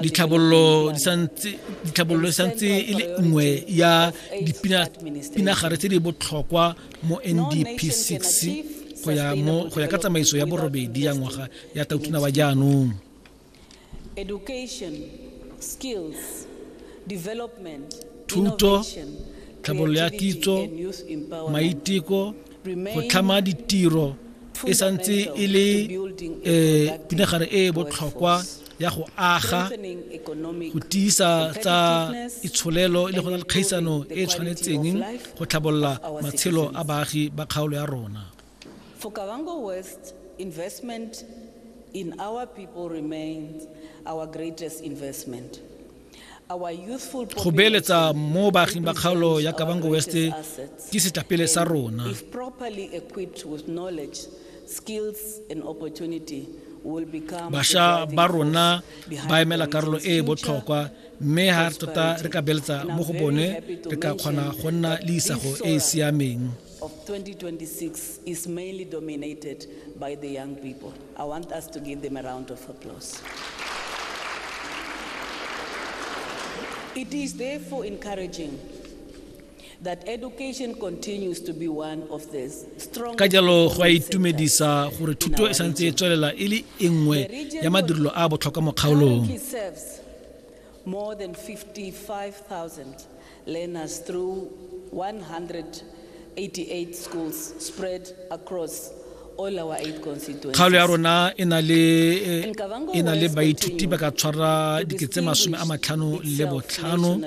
Ditlhabololo di santse ditlhabololo e santse e le nngwe ya dipinagare tse di botlhokwa mo NDP 6 go ya ka tsamaiso ya borobedi ya ngwaga ya tautuna wa jaanong. Education, skills, development, thuto innovation, tlhabololo ya creativity, kitso and youth empowerment. maiteko go tlhama ditiro e santse e le eh, pinagare e e botlhokwa ya go aga go tiisa tsa itsholelo e le go na le kgaisano e e tshwanetseng go tlhabolola matshelo a baagi ba kgaolo ya rona For Kavango West, investment in our people remains our greatest investment. Our youthful Go beeletsa population mo baaging ba kgaolo ya represents our Kavango West greatest assets. ke setapele sa And rona. If properly equipped with knowledge, skills and opportunity will become the Basha driving ba rona force behind ba emela Orang's karolo e e future botlhokwa mme ha tota re ka beeletsa And I'm mo go very bone happy to re ka kgona mention go nna that le isago e e Isora siameng. of 2026 is mainly dominated by the young people. I want us to give them a round of applause. It is therefore encouraging that education continues to be one of the strong ka jalo go a itumedisa gore thuto e santse e tswelela e le e nngwe ya madirelo a botlhokwa mo kgaolong more than 55,000 learners through 188 schools spread across all our eight constituencies. Kgalo ya rona e na le e na le baithuti ba ka tshwara diketse masome a matlhano le botlhano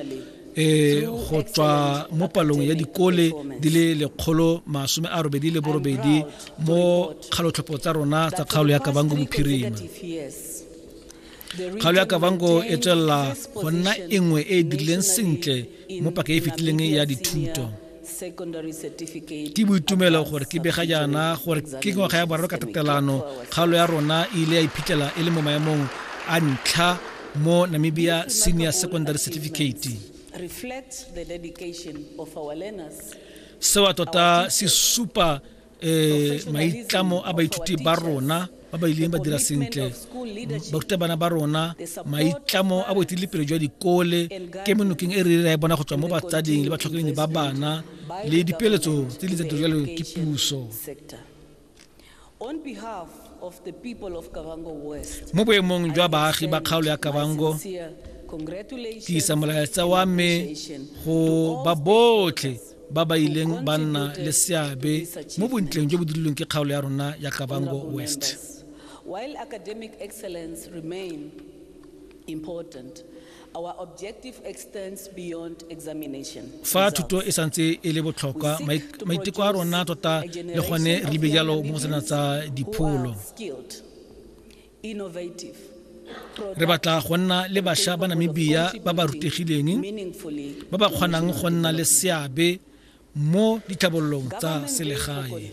e go tswa mo palong ya dikole di le lekgolo masome a robedi le borobedi mo kgalotlhopho tsa rona tsa kgaolo ya kabango bophirima kgalo ya kavango e tswelela go nna e nngwe e e dirileng sentle mo paka e e fetileng ya dithuto ke boitumelo gore ke bega jaana gore ke ngwaga ya boraro ka tatelano kgaolo ya rona e ile ya iphitlhela e le mo maemong a ntlha mo namibia senior secondary certificate seo tota se supa eh maitlamo a baithuti ba rona ba ba ileng ba dira sentle barutabana ba rona maitlamo a boeteledipele jwa dikole ke menokeng e re ra e bona go tswa mo batsading le batlhokomedi ba bana le dipeeletso tse di tsa dirjalo ke puso mo boemong jwa baagi ba kgaolo ya kabango ke isa molaetsa wa me go ba botlhe ba ba ileng ba nna le seabe mo bontleng jo bo dirilweng ke kgaolo ya rona ya kabango west While academic excellence remain important, our objective extends beyond examination. Fa thuto e santse e le botlhokwa, maiteko a rona tota le gone re be jalo mo go sena tsa dipholo. re batla go nna le bašwa ba namibia ba ba rutegileng ba ba kgonang go nna le seabe mo ditlhabololong tsa selegae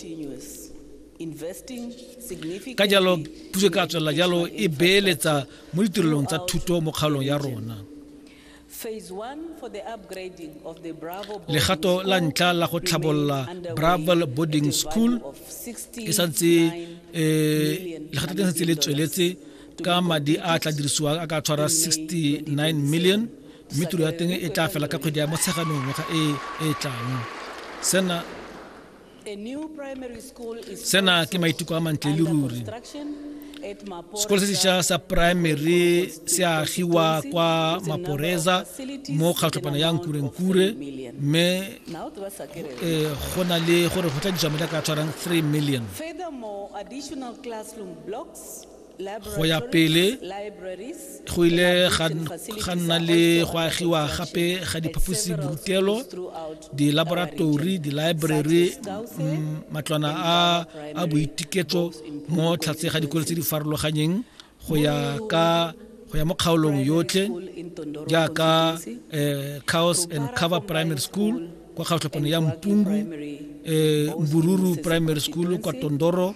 ka jalo puso e ka tswelela jalo e beeletsa mo ditirelong tsa thuto mo kgaolong ya rona legato la ntlha la go tlhabolola bravel boarding school e santse eh, legato le santse le tsweletse ka madi a tla dirisiwang a ka tshwara 69 million mme tiro ya teng e tla fela ka kgwedi ya motsheganong ngwaga e e tlang sena sena ke maiteko a mantle le ruri sekolo se sešwa sa primary se agiwa kwa maporeza mo kgatlhopana ya nkurenkure mme eh, go na le gore go tla dijamela ka tshwarang 3 million go ya pele go ile ga nna le go agiwa gape ga diphaposi borutelo dilaboratori di-library mm, matlwana a boitiketso mo tlhatse ga dikolo tse di farologanyeng go ya ka go ya mo kgaolong yotlhe jaaka eh, cows and cover primary school kwa kgaotlhopano ya mpungu eh, mbururu primary school kwa tondoro